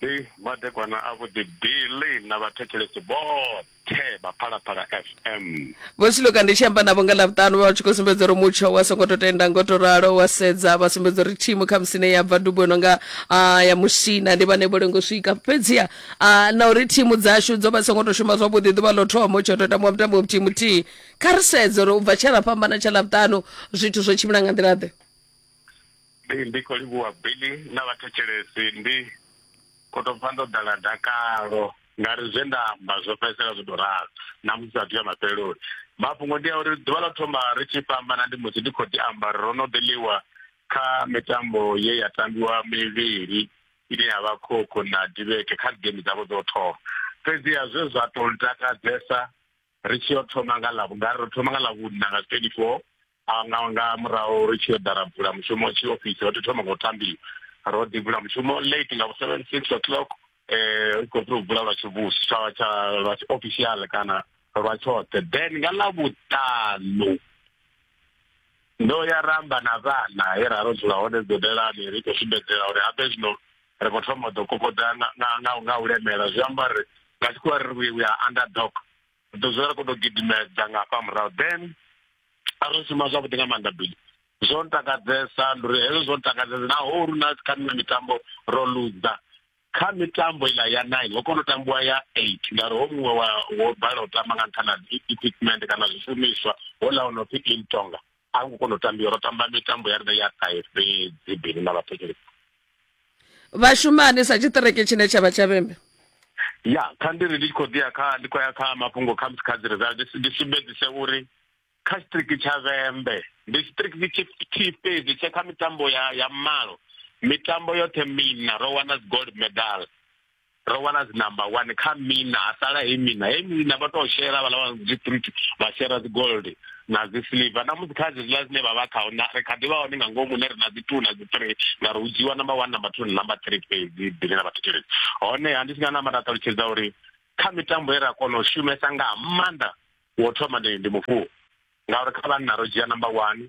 Hei madekwana a vhuḓi bili na vhathetshelesi vhoṱhe vha phalaphala fm vho siloka ndi tshi amba navho nga ḽavhuṱanu vha tshi khou sumbedza uri mutsho wa songo tou tenda ngo tou ralo wa sedza vha sumbedza uri thimu kha musine ya bva dubo no nga ah, ya musina ndi vhane vho lengo swika fhedziha ah, na uri thimu dzashu dzo vha songo tou shuma zwavhuḓi ḓuvha ḽo thoma u tsho tou tambiwa mutambo muthihi muthihi kha ri sedze uri u bva tshe ra fhambana tsha ḽavhuṱanu zwithu zwo tshimbila nga nḓila ḓe Ndi ndi kho livhuwa Billy na vhathetshelesi ndi kho to pfa ndo ḓala dakalo ngari zwe nda amba zwo fhedzisela zwo to ralo na musi sathu ya mafheloni mafhungo ndi a uri ḓuvha ḽa thoma ri tshi fhambana ndi musi ndi kho ḓi amba ro no ḓi ḽiwa kha mitambo ye ya tambiwa mivhili ine ya vha khokho na dibeke kha game dzavho dzo thoma fhedzi ya zwe zwa to takadzesa ri tshi yo thoma nga ḽa vhungari ro thoma nga ḽa vhunna nga 24 a nga nga murahu ri tshi yo ḓara bula mushumo tshi ofisi ro thoma ngo tambi ro ḓi bula mushumo late nga 7 6 o'clock eh u khou tou bula lwa tshivhusi tsha tsha lwa official kana lwa tshoṱhe then nga ḽa vhuṱanu ndo ya ramba na vhana he ra ro dzula hone dodelani ri khou sumbedzela uri habe zwino ri khou thoma ḓo kokoda nga nga nga u lemela zwi amba ri nga tshikhuwa ri we are underdog ri ḓo dzula ri khou tou gidimedza nga hafha murahu then a ri shuma zwavhuḓi nga maanḓa bili zwo ntakadzesa ndi uri hezwo zwo ntakadzesa naho hu na kha miṅwe mitambo ro luza kha mitambo iḽa ya nine ho kona u tambiwa ya eight ngauri ho muṅwe wa wo bala u tamba nga nṱhana equipment kana zwishumiswa ho ḽa o no pfi intonga a hu ngo kona u tambiwa ro tamba mitambo ya riṋe ya ṱahe fhedzi bini na vhathetshelesi vhashumani sa tshiṱireke tshine tsha vha tsha vhembe ya kha ndi ri ndi tshi khou ḓiya kha ndi khou ya kha mafhungo kha musi kha dzi result ndi sumbedzise uri kha tshiṱiriki tsha vhembe ndi tshiṱiriki tshithihi fhedzi tshe kha mitambo ya ya malo mitambo yoṱhe mina ro wana dzi gold medal ro wana dzi number one kha mina ha sala he mina he mina vha tou shela vha lavha dzi fruit vha shela dzi gold na dzi silver na musi kha zwiḽa zwine vha vha khao na ri kha ḓi vha hone nga ngomu ne ri na dzi two na dzi three na ri u dzhiwa number one number two na number three fhedzi bile na vhathetshelesi honeha ndi si nga namba nda ṱalutshedza uri kha mitambo ye ra kona u shumesa nga maanḓa wo thoma ndi ndi mufuwo ngauri kha vhanna ro dzhia number one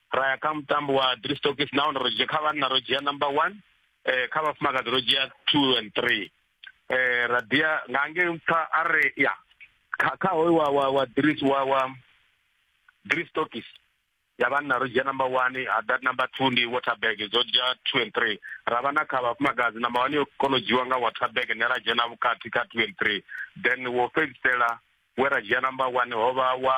ra ya kha mutambo wa three stokis nahone ro dzhia kha vhanna ro dzhia number one eh kha vhafumakadzi ro dzhia two and three eh ra dia nga ngei mpha a re ya kha kha hoyu wa wa wa dris wa wa three stokis ya vhanna ro dzhia number one ha that number two ndi waterberg dzo dzhia two and three ra vha na kha vhafumakadzi number one yo kona u dzhiwa nga waterberg ne ra dzhena vhukati kha two and three then wo fhedzisela we ra dzhia number one ho vha wa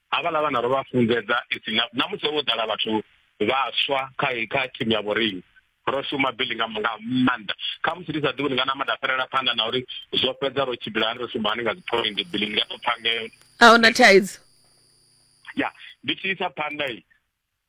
havhaḽa vhana ro vha funzedza ipfi na musi ho ḓala vhathu vhaswa kha kha thimu ya vhorinyi ro shuma bili nga nga maanḓa kha musi ndi sa ḓivhi nga na maḓi a fhelela phanḓa na uri zwo fhedza ro tshimbila hani ro shuma hani nga dzi point bili ndi nga to pfha ngeo a huna thaidzo ya ndi tshi isa phanḓa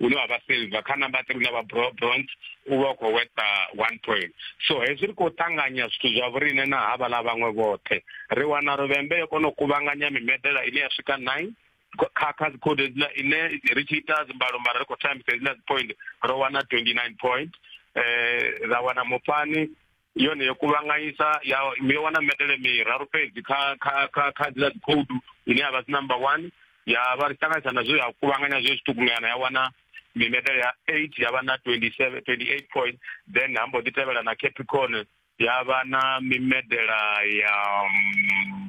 une wa vha silver kha number three une vha bronze u vha u khou weta one point so hezwi ri khou ṱanganya zwithu zwa vhorine na havhala vhaṅwe vhoṱhe ri wana ruvhembe yo kona u kuvhanganya mimedela ine ya swika nine kha kha dzikhode dzila ine ri tshi ita dzimbalo mara ri khou tambisa dzila dzi point ro wana 29 point eh ra wana mupani yone yo kuvhanganyisa ya yo wana medele miraru fhedzi kha kha kha kha dzila code ine ya vha si number 1 ya vha ri ṱanganyisa na zwo ya kuvhanganya zwo zwiṱukunyana ya wana mimedele ya 8 ya vha na 27 28 point then ha mbo ḓi tevhela na Capricorn ya vha na mimedela ya mm,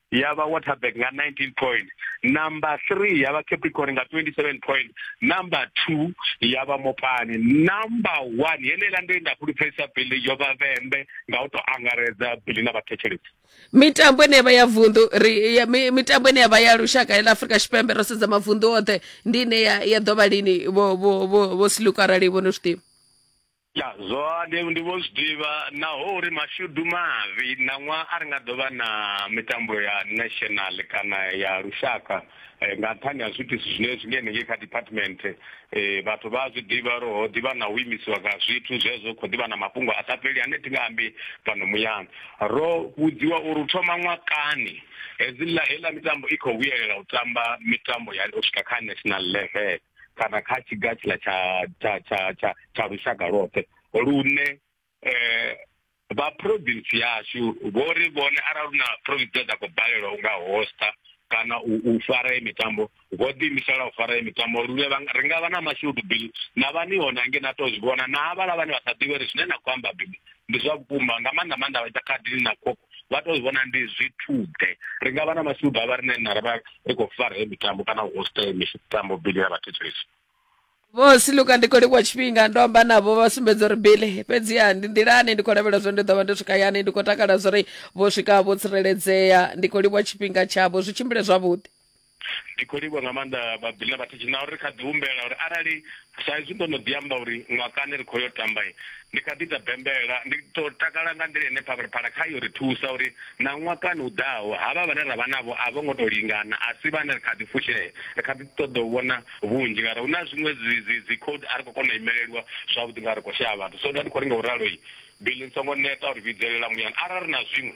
ya vha waterberg nga 19 point number 3 ya vha capricorn nga 27 point number 2 ya vha mopani number 1 yeneiḽa ndo inda fhulufhelisa bili yo vha vhembe nga u tou angaredza bili na vhathetshelesi mitambo ine yavha ya vundu ri ya, mi, mitambo ine yavha ya lushaka ya ḽa afurika tshipembe ro sedza mavundu oṱhe ndi ine ya, ya ḓovha lini vho vho vho vho siluka arali vho no zwiḓivha Ya, zwone ndi vho zwi ḓivha naho uri mashudu mavhi ṋaṅwaha a ri nga ḓo vha na mitambo ya national kana ya lushaka nga nṱhani ha zwiitisi zwine zwi nga henengei kha department vhathu vha a zwi ḓivha uri ho ḓivha na u imisiwa nga zwithu zwezwo hu khou ḓivha na mafhungo a sa fheli ane thi nga ambi fhano muyani. Ro vhudziwa uri u thoma ṅwakani hedziḽa heiḽa mitambo i khou vhuyelela u tamba mitambo ya u swika kha national level. kana kha tshiga tshiḽa tsha tsha tsha tsha tsha lushaka lwoṱhe lune eh vha province yashu vho ri vhone arali na province dza khou balelwa unga hosta kana u fara ye mitambo vho ḓi imisela u fara ye mitambo lune ri nga vha na mashudu bill na vha ni hone hange na to zwi vhona na havhala vhane vha sa ḓivhe ri zwine na khou amba bill ndi zwa vhukuma nga maanḓa maanḓa vha ita khadi na khokho vha to vhona ndi zwithude ri nga vha na masudu a vha rine na ravha ri khou fara he mitambo kana u hosta he mitambo bili ya vhathetshelesi vho siluka ndi khou livhuwa tshifhinga ndo amba navho vha sumbedza uri bili fhedziha ndi nḓilani ndi khou lavhelela zwo ndi ḓo vha ndo swika yani ndi khou takala zwo ri vho swika vho tsireledzea ndi khou livhuwa tshifhinga tshavho zwi tshimbile zwavhuḓi Ndi khou livhuwa nga maanḓa vhabili na vhathetshi na uri ri kha ḓi humbela uri arali sa izwi ndo no ḓi amba uri ṅwakani ri khou yo tamba, ndi kha ḓi ita bembela, ndi ḓo takala nga nḓila ine Phalaphala khayo ri thusa uri na ṅwakani u ḓaho havha vhane ra vha navho a vho ngo tou lingana, a si vhane ri kha ḓi fushea, ri kha ḓi ṱoḓa u vhona vhunzhi ngauri hu na zwiṅwe dzi dzi dzi code a ri khou kona u imelelwa zwavhuḓi ngauri ri khou shaya vhathu. So nda ndi khou ri nga u ralo, Billy ni songo neta uri vhidzelela muyani arali ri na zwiṅwe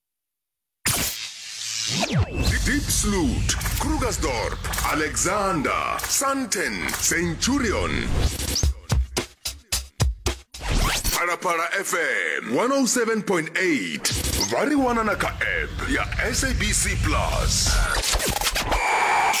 Diepsloot, Krugersdorp, Alexander, Sandton, Centurion. Phalaphala FM 107.8 vha ri wana na kha app ya SABC Plus.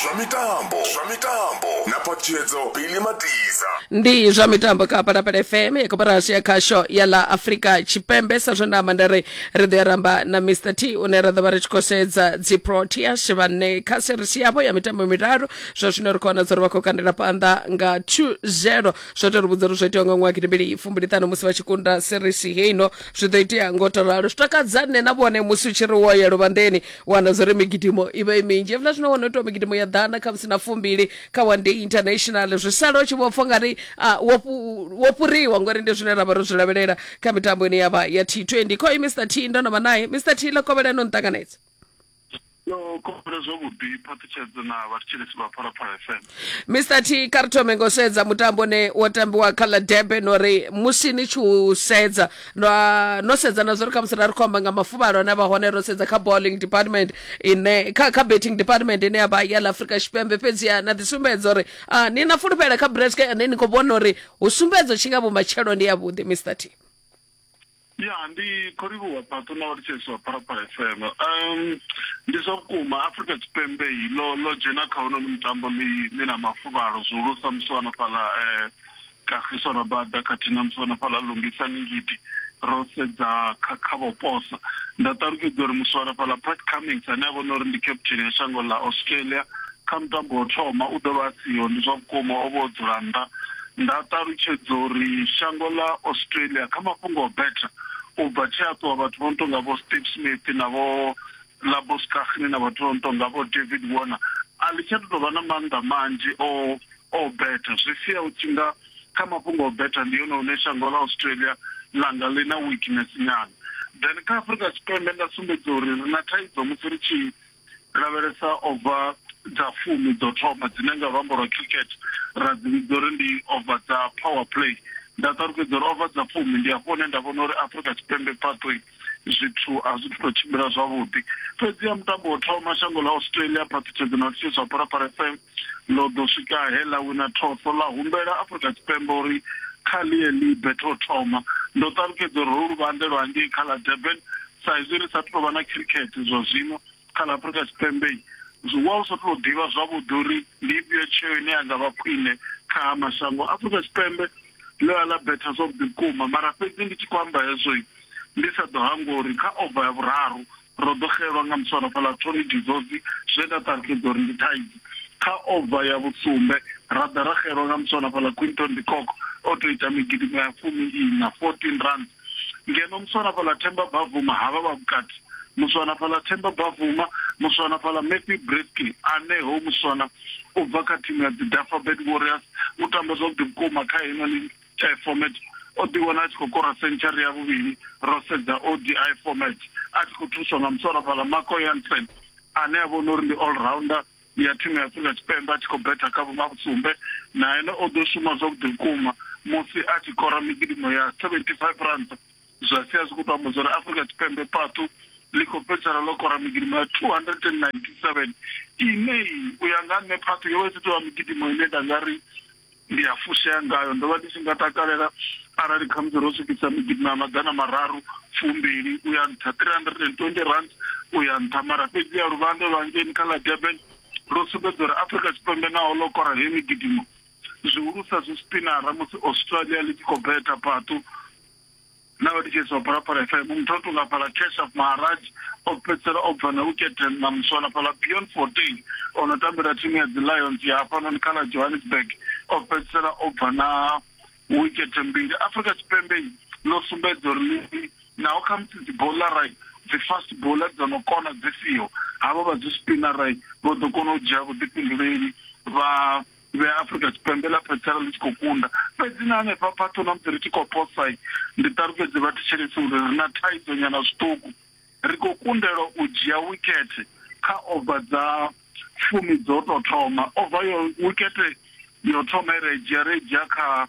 Zwa mitambo, zwa mitambo na phatshedzo Billy Matiza. ndi zwa mitambo kha palapala fm ya koporasi ya khasho ya ḽa afrika tshipembe sa zwe nda amba nda ri ri ḓo ya ramba na mr t une ra ḓo vha ri tshi khou sedza dzi proteas vhane kha serisi yavho ya mitambo miraru zwa zwino ri khou wana dza uri vha khou kandela phanḓa nga 2-0 zwo tou ri vhudza uri zwo itewa nga ṅwaha gidimbili fumbiliṱhanu musi vha tshi kunda serisi heino zwi ḓo itea ngo to ralo zwi takadza nṋe na vhone musi u tshi ri wo yelo vhanḓeni wana zwa uri migidimo i vha i minzhi evula zwino wana itiwa migidimo ya ḓana kha musi na fumbili kha one day international zwi sala u tshi vho pfa ungari ah, wo fhu- wo fhuriwa ngori ndi zwine ra vha ro zwi lavhelela kha mitambo ine yavha ya t20 khoi mr t ndo no vha naye mr t ḽokovhela no nṱanganedza yo khopela zwavhuḓi phaṱhutshedzo na vhathetshelesi vha phalaphala fm mr t kha ri thome ngo sedza mutambo ne wo tambiwa kha ḽa debe no ri musi ni tshi u sedza no, no sedza na zwo ri khamusi ra ri khomba nga mafuvhalo ane vha hone ro sedza kha bowling department ine kha, kha betting department ine ya vha ya ḽa afrika tshipembe fhedziha na ḓisumbedza uri uh, ni na fulufhela kha bresk ane ni khou vhona uri hu sumbedzo tshi nga vhumatshelo ndi yavhuḓi mr t ya ndi khou livhuwa patu na vhatsheswa pharapara fm um ndi zwa vhukuma afrika tshipembe yi lo lo dzhena kha hono mutambo ḽi ḽi na mafuvhalo zwihulusa musi wana fhaḽa um kagiso rabada khathihi na musi wana fhaḽa lungisa ningidi ro sedza kha kha vhoposa nda ṱalutshedza uri musi wana fhaḽa pat cummings ane a vhona uri ndi captain ya shango ḽa australia Kha mutambo wa u thoma, u ḓo vha a siho. Ndi zwa vhukuma, o vha o dzula nnḓa. Nda ṱalutshedza uri shango ḽa Australia kha mafhungo a u betha, u bva tshe a ṱuwa vhathu vho no tou nga vho Steve Smith na vho Labus Cagney na vhathu vho no tou nga vho David Warner, a ḽi tsha tou vha na maanḓa manzhi o o betha. Zwi sia hu tshi nga kha mafhungo a u betha ndi hone hune shango ḽa Australia ḽa nga ḽi na weakness nyana. Then kha Afrika Tshipembe nda sumbedza uri ri na thaidzo musi ri tshi lavhelesa ova dza fumi dzo thoma dzine nga luambo lwa cricket ra dzi vhidza uri ndi ova dza power play nda ṱalukedzwa uri ova dza fumi ndi hafho hune nda vhona uri afrika tshipembe pathway zwithu a zwi tou tshimbila zwavhuḓi fhedzi ya mutambo wo thoma shango ḽa australia phaṱhutshedzo na lutshisa pharapara fm ḽo ḓo swika he ḽa wina thotho, ḽa humbela Afrika Tshipembe uri kha ḽi ye ḽi bete u thoma. Ndo ṱalutshedza uri holu luvhanḓe lwa ngei kha ḽa Durban, sa izwi ri sa athu tou vha na khirikhethe zwa zwino kha ḽa Afrika Tshipembe, zwi wa lu sa athu tou ḓivha zwavhuḓi uri ndi ifhio tsheo ine ya nga vha khwine kha ha mashango. Afrika Tshipembe ḽo ya ḽa betha zwavhuḓi vhukuma, mara fhedzi ndi tshi khou amba hezwo ndi sa ḓo hangwa uri kha ova ya vhuraru Ro ḓo xelwa nga muswarafhaḽa Tony de Zozy zwe nda ṱalutshedza uri ndi thaidzo. Kha ova ya vhusumbe, ra ḓa ra xelwa nga muswarafhaḽa Quinton de Kock o tou ita migidimo ya fumi-iṋa, 14 runs, ngeno muswarafhaḽa Themba Bavuma ha vha vha vhukati, muswanafhaḽa Themba Bavuma, muswanafhaḽa Matthew Breathke ane ho muswana u bva kha thimu ya dzi Dufferbed Warriors u tamba zwavhuḓi vhukuma kha heino ligi. eh, format o ḓiwana a tshi khou kora century ya vhuvhili ro sedza odi format a tshi khou thuswa nga muswara fhala marco yansen ane a vhona uri ndi all rounder ya thimu ya afrika tshipembe a tshi khou betha kha vhumavhusumbe na ene o ḓo shuma zwavhuḓi vhukuma musi a tshi kora migidimo ya 75 ranta zwa sia zwi khou tou amba zwori afrika tshipembe patu ḽi khou fhedzisela ḽo kora migidimo ya 297 ine u ya nga nṋe patu yo vha i si tovha migidimo ine nda nga ri ndi a fushea ngayo ndo vha ndi tshi nga takalela arali khamusi ro swikisa migidi na maḓana mararu fumbili u ya nṱha 320 rand u ya nṱha mara fhedzi ya luvhanda lwa ngeni kha ḽa durban lwo sumbedza uri afrika tshipembe naho ḽo kora he migidimo zwihulusa zwi spinara musi australia ḽi tshi khou beta patu na vha litshedza u phalaphala fm muthu o tonga phala kesha maharaj o fhedzisela o bva na uketen na muswana phala beyond fourteen o no tambela thimu ya dzi lions ya hafhanoni kha ḽa johannesburg o fhedzisela o bva na wikete mbili afrika tshipembe ḽo sumbedza uri ḽi naho khamusi dzi bola rai dzi fast bola dzo no kona dzi siho havho vha dzi spinner rai vho ḓo kona u dzhia vhuḓifhinduleli vha veafrica tshipembe ḽa phetshela ḽi tshi khou kunda fhedzi na hanefha phaṱho na musi ri tshi khou posai ndi ṱalufhedze vha thetshelesi uri ri na thaidzo nyana zwiṱuku ri khou kundelwa u dzhia wikhethe kha ova dza fumi dzo tou thoma ova yo wikhethe yo thoma i re dzhia re dzhia kha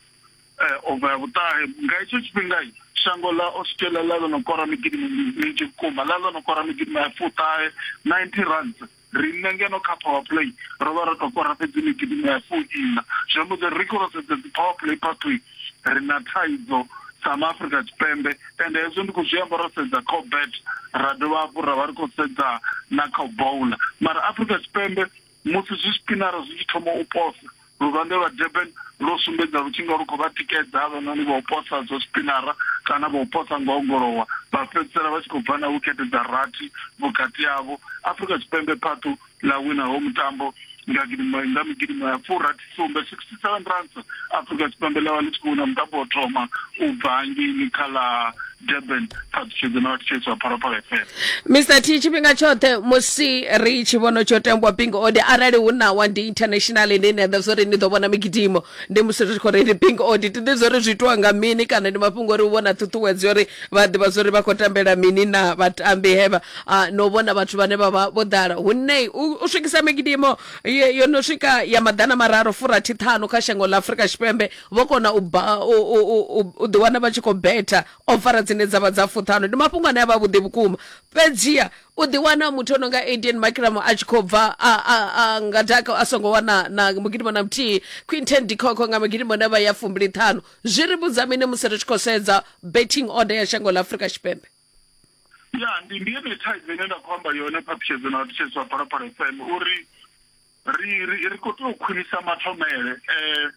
eh, ova ya vhuṱahe nga hetsho tshifhinga shango ḽa australia ḽa ḽo no kora migidimo minzhi vhukuma ḽa ḽo no kora migidimo ya fuṱahe 90 runs Riṋe ngeno kha power play ro vha ro tou kora fhedzi ni gidima ya fuiṋa, zwi amba uri ri khou ro sedza dzi power play pathway ri na thaidzo sa ma Afrika Tshipembe ende hezwo ndi khou zwi amba ro sedza kha u bet ra dovha hafhu ra vha ri khou sedza na kha u bowler mara Afrika Tshipembe musi zwi spinara zwi tshi thoma u posa Luvhanḓe lwa Durban lwo sumbedza lu tshi nga lu khou vha tikedza havhanoni vha u posa zwa zwipinara kana vha u posa nga u ongolowa, vha fhedzisela vha tshi khou bva na wikete dza rathi vhukati havho. Afrika Tshipembe phaṱu ḽa wina hoyu mutambo nga gidimo nga migidimo ya furathi sumbe, 67 runs, Afrika Tshipembe ḽa vha ḽi tshi khou wina mutambo wa u thoma u bva hangeini kha ḽa durban ṱhalutshedzo na vhathetshedzo ha phalaphala fm mr t tshifhinga tshoṱhe musi ri tshi vhona tsho tambwa bingo ode arali hu nawa ndi international ine ni aḓa zwori ni ḓo vhona migidimo ndi musi ri tshi khou reili bingo ode ti ḓi zwori zwi itiwa nga mini kana ndi mafhungo ori u vhona ṱhuṱhuwedzo uri vha ḓivha zwori vha khou tambela mini na vhatambi hevha ah, no vhona vhathu vhane vha vha vho ḓala hunnei u u swikisa migidimo ye- yo no swika ya maḓana mararu furathi ṱhanu kha shango ḽa afurika tshipembe vho kona u ḓiwana vha tshi khou betha ofara dzine dza vha dza fuṱhano ndi mafhungo ane a vha vhuḓi vhukuma fhedziha u ḓiwana muthu ono nga adn makiramo a tshi khou bva nga daka a songo wana na mugidimo na muthihi quinten dikhokho nga magidimo ne vha ya fumbili ṱhanu zwi ri vhudza mini musi ri tshi khou sedza betting order ya shango ḽa afurika tshipembe ya ndi ndi yone thaidzo ine nda khou amba yone phaṱhutshedzo na vhathetshelesi vha phalaphala fm uri Ri, ri, ri khou tea u khwinisa mathomele. Eh,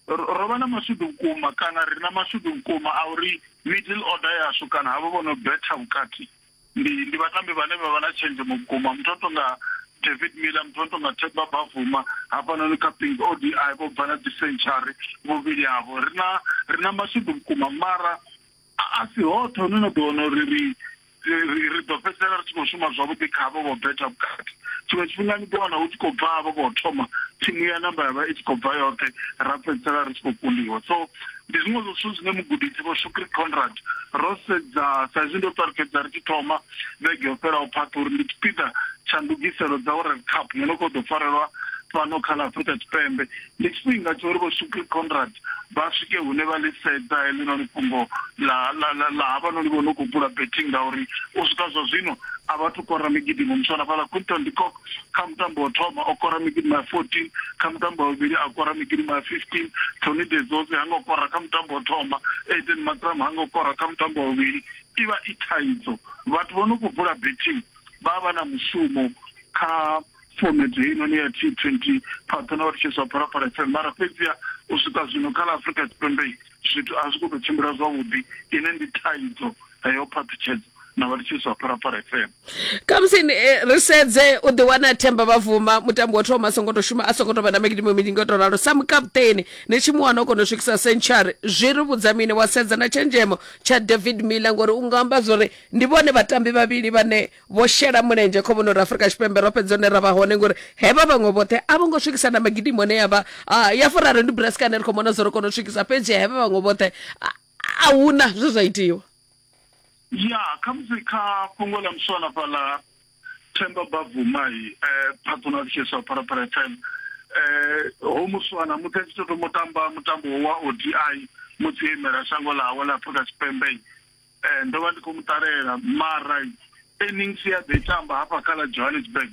ro vha na mashudu vhukuma kana ri na mashudu vhukuma a uri middle order yashu kana havho vho no betha vhukati ndi ndi vhatambi vhane vha vha na tshenzhemo vhukuma muthu o tonga David Miller muthu o tonga Themba Bavuma hafhanoni kha Pink ODI vho bva na dzi century vhuvhili havho ri na ri na mashudu vhukuma mara A a si hoṱhe hune na ḓo wana uri ri ri ri ḓo fhedzisela ri tshi khou shuma zwavhuḓi kha avho vho betha vhukati tshiṅwe tshifhinga ni ḓo wana hu tshi khou bva avho vho thoma thimu ya namba ya vha i tshi khou bva yoṱhe ra fhedzisela ri tshi khou kundiwa so ndi zwiṅwe zwa zwithu zwine mugudisi vho shukri conrad ro sedza sa izwi ndo ṱwa ri fhedza ri tshi thoma vhege yo fhelaho phaṱha uri ndi tshipiḓa tsha ndugiselo dza world cup yo no khou ḓo farelwa fhano kha ḽa afrika tshipembe Ndi tshifhinga tsha uri Vho Shukri Conrad vha swike hune vha ḽi sedza heḽinoni fhungo ḽa ḽa ḽa ḽa havhanoni vho no khou bula betting ngauri u swika zwa zwino a vha thu kora migidimo. Muthu a no fhaḽa Quinton de Kock kha mutambo wo thoma o kora migidimo ya 14, kha mutambo wa vhuvhili a kora migidimo ya 15, Tony de Zoze ha ngo kora kha mutambo wo thoma, Aiden Markram ha ngo kora kha mutambo wa vhuvhili. I vha i thaidzo. Vhathu vho no khou bula betting vha vha vha na mushumo kha. Fomedzo heinoni ya T20 pfadzana uri tshiswa Phalaphala FM mara fhedziha u swika zwino kha ḽa Afrika Tshipembe zwithu a zwi khou tou tshimbila zwavhuḓi, ine ndi thaidzo heyo phaṱhutshedzo na vha tshiswa Phalaphala FM. Khamusi eh, ri sedze u ḓi wana Themba Bavuma mutambi wa thoma a songo to shuma a songo to vha na migidimo minzhi nga to ralo sa mukaputeni ni tshi mu wana o kono swikisa century zwi ri vhudza mini wa sedza na tshenzhemo tsha David Miller ngori u nga amba zwori ndi vhone vhatambi vhavhili vhane vho shela mulenzhe khomboni uri afurika tshipembe ro fhedza hune ra vha hone ngori hevha vhaṅwe vhoṱhe a vho ngo swikisa na magidimo ne ya vha ah, ya furaro ndi braskane ri khou mona zwo ri kona u swikisa fhedzi hevha vhaṅwe vhoṱhe ah, a huna zwe zwa itiwa ya khamusi kha fhungo ḽa muswana fhaḽa themba bavumai um eh, patronal case of parapara fm um ho muswana musi a tshi tou thoma u tamba mutambo wa o d i musi imela shango ḽawe ḽa afrika tshipembe Ee, ndo vha ndi khou mu ṱalela mara innings ye a ḓo i tamba hafha kha ḽa Johannesburg